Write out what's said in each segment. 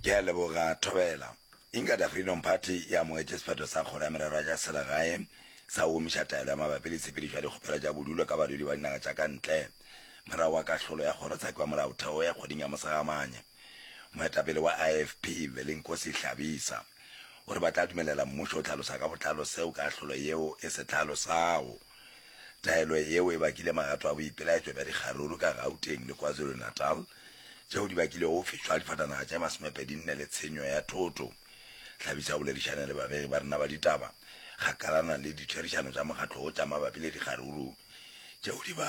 Ke a leboga, Thobela. Inkatha Freedom Party e amogetše sephetho sa Kgoro ya Merero ya tša Selegae sa go omiša taelo ya mabapi le tshepedišo ya dikgopelo tša bodulo ka badudi ba dinaga tša ka ntle morago ga kahlolo ya Kgorotsheko ya Molaotheo ya kgweding ya Mosagamane. Moetapele wa IFP, Velinkosi Hlabisa, o re ba tla dumelela mmušo go hlalosa ka botlalo seo kahlolo yeo e se hlalosago. Taelo yeo e bakile magato a boipelaetšo bja dikgaruru ka Gauteng le KwaZulu-Natal, tšeo di bakilego go fišwa ga difatanaga tše masomepedi nne le tshenyo ya thoto. Tlhabisa o boledišane le babegi ba rena ba ditaba kgakalana le ditherišano tša mokgatlo wo tša mabapi le dikgaruru tšeo di ba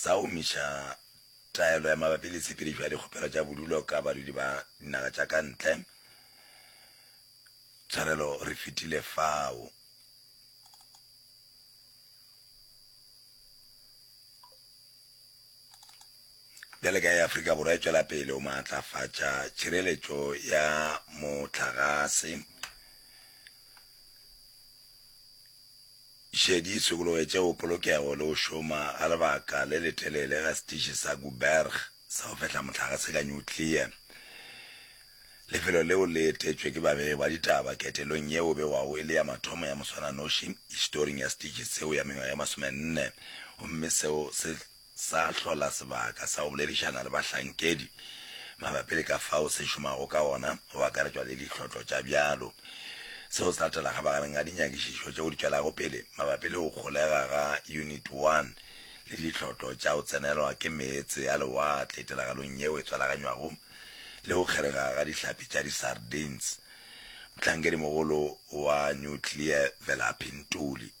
sa omiša taelo ya mabapi le tshepedišo ya dikgopelo tša bodulo ka badudi ba dinaga tša ka ntle. Tshwarelo re fetile fao. Bjale ka ya Afrika Borwa e tšwela pele o maatlafatša tšhireletšo ya motlagase. Šedi sokologetše go polokego le go šoma ga lebaka le letelele ga setiši sa Guberg sa go fehla mohlagase ka nyuklea. Lefelo leo le etetšwe ke babegi ba ditaba ketelong yeo begwago e le ya mathomo ya moswananoši historing ya setiši seo ya mengwaga ye masomenne gomme seo se sa hlola sebaka sa go boledišana le bahlankedi mabapi le ka fao se šomago ka gona, go akaretšwa le dihlotlo tša bjalo. Seo se latela kgabagareng ga dinyakišišo tšeo di tšwelago pele mabapi le go kgolega ga Unit One le dihlotlo tša go tsenelwa ke meetse a lewatle tiragalong yeo e tswalaganywago le go kgerega ga dihlapi tša di-sardines. Mohlankedi-mogolo wa Nuclear Velaphi Ntuli.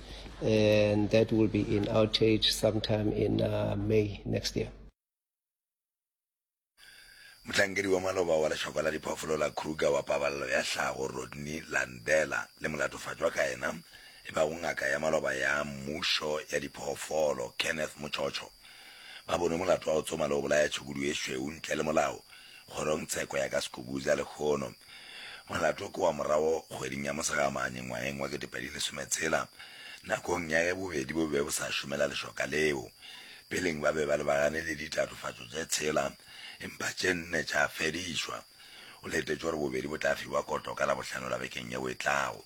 and that will be in outage sometime in uh, May next year. mohlankedi wa maloba wa lešoko la diphoofolo la kruger wa pabalelo ya hlago rodney landela le molatofatšwa ka yena e bago ngaka ya maloba ya mmušo ya diphoofolo kenneth motshotsho ba bone molato wa go tsoma le go bolaya tšhukudu e šweu ntle le molao Kgorong tsheko ya ka Skukuza lehono. Molato ke wa morago kgweding ya Mosegamane ngwaheng wa ketepedi lesome tshela, nakong ya ge bobedi bo be bo sa šomela lešoka leo. Peleng ba be ba lebagane le ditatofatšo tše tshela, empa tše nne tša fedišwa. O letetše gore bobedi bo tla fiwa koto ka Labohlano la bekeng yeo e tlago.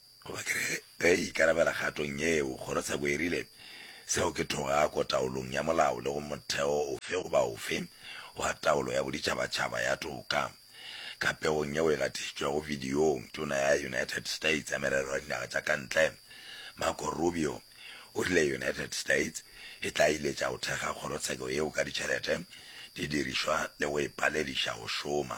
Goba ke re, ge e ikarabela kgatong yeo, kgorotsheko e rile, Seo ke thogako taolong ya molao le go motheo ofe goba ofe wa taolo ya boditšhabatšhaba ya toka. Ka pegong yeo e gatišitšwego bidiong, Tona ya United States ya Merero ya Dinaga tša ka Ntle, Marco Rubio, o rile United States e tla iletša go thekga kgorotsheko yeo ka ditšhelete, didirišwa le go e palediša go šoma.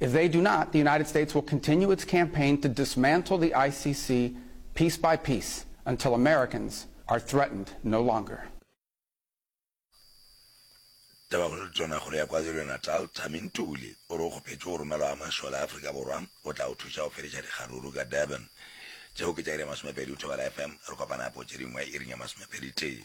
If they do not, the United States will continue its campaign to dismantle the ICC piece by piece until Americans are threatened no longer. Tabakgolo Tonakgolo ya KwaZulu-Natal, Thami Ntuli, o re o kgopetše go romelwa ga mašole a Afrika Borwa go tla go thuša go fediša dikgaruru ka Durban. Tšeo ke tša iri ya masomepedi o thobela FM, re kopana gape go tše dingwe iring ya masomepedi tee.